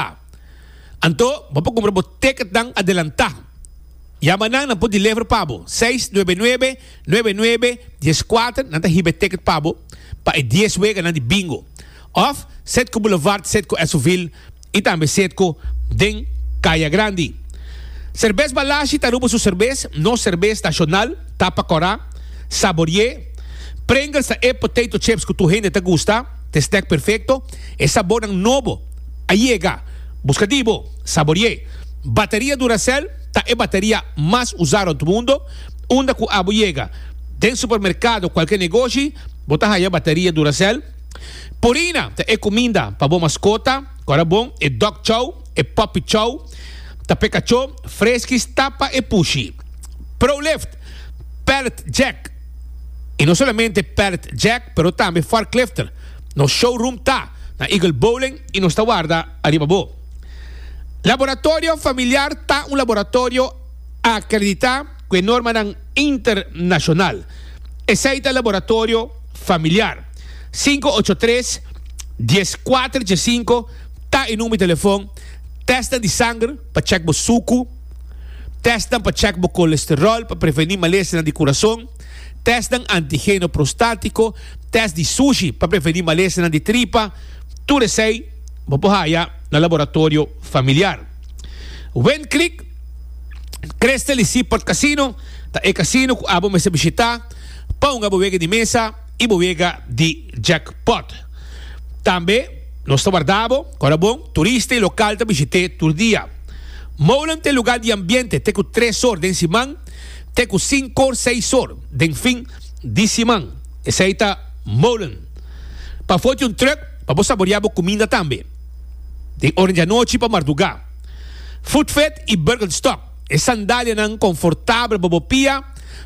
A. Anto, bo por kumpra bo teketnan adelantá. Yama nan, nan por deliver pa bo. Seis nuebe nuebe, nuebe nuebe, dies kuater, nan ta hiba e teket pa bo, pa e dies weganan di bingo. Òf, Setco Boulevard, Setco Esovil, i tambe Setco den Kaya Grandi. Serbes Balashi ta Aruba su serbes, nos serbes nashonal, tapa kòrá, saborié. Pringles ta e potato chips ku tur hende ta gusta, ta e snack perfekto, e sabornan nobo. a yega. Buska di bo sabori'é. Bateria Duracell ta e bateria mas usá rònt mundo. Unda ku abo yega, den supermerkado kualke negoshi, bo ta haña bateria Duracell. Purina ta e kuminda pa bo maskota, kòrda bon, e dog chow, e puppy chow, ta p'e kachó, freskis ta pa e pushi. Prolift, pallet jack, i no solamente pallet jack, pero tambe forklifter. Nos showroom ta na Eagle Bowling y nos ta warda ariba bo. Laboratorio Familiar ta un laboratorio acredita cu e normanan internacional. Esey ta Laboratorio Familiar. Cinco ocho tres, dies cuater dje cinco ta e number di telefon. Testnan di sanger pa check bo sucu. Testnan pa check bo colesterol pa preveni malesternan di curason. test den antigeno prostatico, test di sushi pa preveni malesnan di tripa, tur esey bo por haya na laboratorio familiar. Win Creek Crystal y Seaport Casino ta e casino cu abo mester bishita pa hunga bo wega di mesa y bo wega di jackpot. Tambe nos ta warda abo cora bon turista y local ta bishite tur dia. Molen ta e lugar di ambiente te cu tres or den siman, te ku sinkor seiszor den fin di siman, esei ta Molen. Pa for di un trùk pa bo saboriá bo kuminda tambe. Den ora di anochi pa mardugá. Footvet i Birkenstock, e sandalianan konfortabel pa bo pia,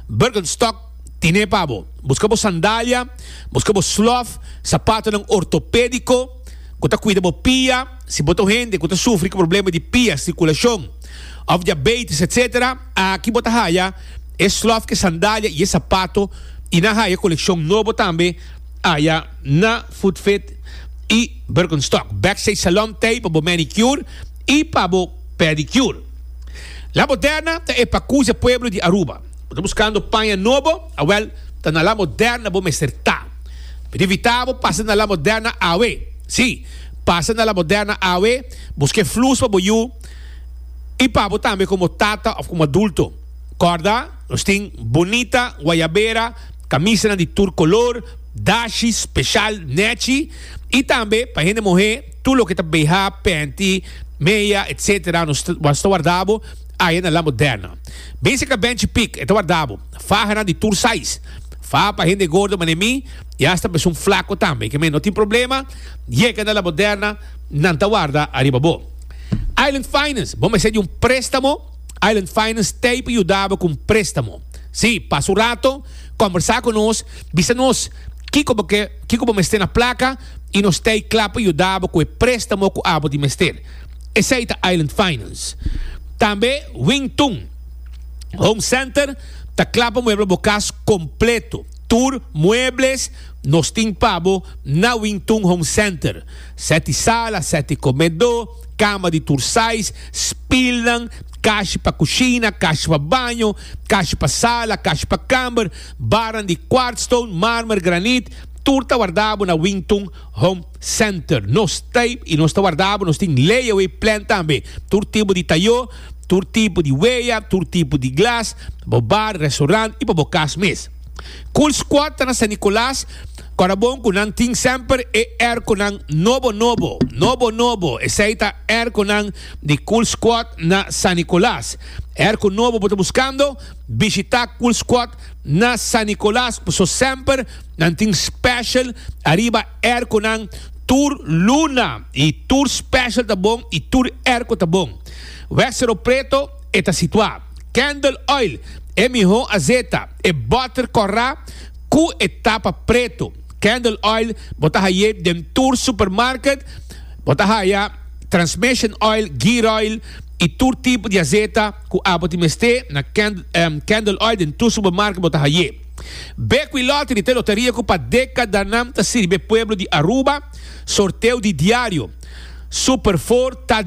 Birkenstock tine pa bo. Buska bo sandalia, buska bo slof, sapatonan ortopédiko ku ta kuida bo pia, si bo ta un hende ku ta sufri ku problema di pia, sikulashon òf diabeitis etc. Aki bo ta haya e slof e sandalia y e sapato y nan haya e coleccion nobo tambe aya na Footfit y Birkenstock Backstage Salon Tay pa bo manicure y pa bo pedicure La Moderna ta e pacuze pueblo di Aruba Bo ta buscando paña nobo? Awel ta na La Moderna bo mester ta Mi ta invita bo pasa na La Moderna awe Si pasa na La Moderna awe busca e flus pa bo yu y pa bo tambe como tata of como adulto. Corda, nos tin bonita guayabera, camisanan di tur color, dashi special nechi y tambe pa hende mohe tur loke ta BH, panty, meya etc. Nos ta warda bo aya na La Moderna. Bese ca Benchi Pick e ta warda bo, fahanan di tur size, faha pa hende gordo mane mi y hasta besun flaco tambe. Keme no tin problema, yega na La Moderna nan ta warda ariba bo. Island Finance, bo mester di un préstamo? Island Finance t'ei pa yudaba ku un préstamo. Sí, pasa un rato, kòmbersá ku nos, bisa nos kiko bo ke, kiko bo mester na plaka i nos t'ei kla pa yudaba ku e préstamo ku abo tin mester. Esei ta Island Finance. Tambe Wing Tun Home Center ta kla pa muebla bo kas kompleto. Tur muebles nos tin pa bo na Wing Tun Home Center. Seti sala, seti komedó, kama di tur sais, spilnan, kashi pa kushina, kashi pa baño, kashi pa sala, kashi pa kamber, barnan di kwartstone, marmer, granit, tur ta wardabo na Wington Home Center. Nos ta i nos ta wardabo, nos tin layaway plan tambe, tur tipo di tayó, tur tipo di weya, tur tipo di glas, pa bo bar, restoran i pa bo kas mes. Cool Squad ta na San Nicolas Cora bon cu nan tin semper e airconan nobo nobo, nobo nobo, esey ta airconan di Cool Squad na San Nicolas. Airco nobo bo ta buscando? Bishita Cool Squad na San Nicolas paso semper nan tin special ariba airconan tur luna y tur special ta bon y tur airco ta bon. Wexero Preto. E ta situá Candle Oil, e mihó azeta, e bòter kòrá ku e tapa pretu. Candle Oil bo ta hay'é den tur supermarket. Bo ta haya Transmission Oil, Gear Oil i tur tipo di azeta ku abo tin mester. Na Candle Oil den tur supermarket bo ta hay'é. Bequi Lottery ta e loteria ku pa dekadanan ta sirbi e pueblo di Aruba. Sorteo di diario, Super Four ta.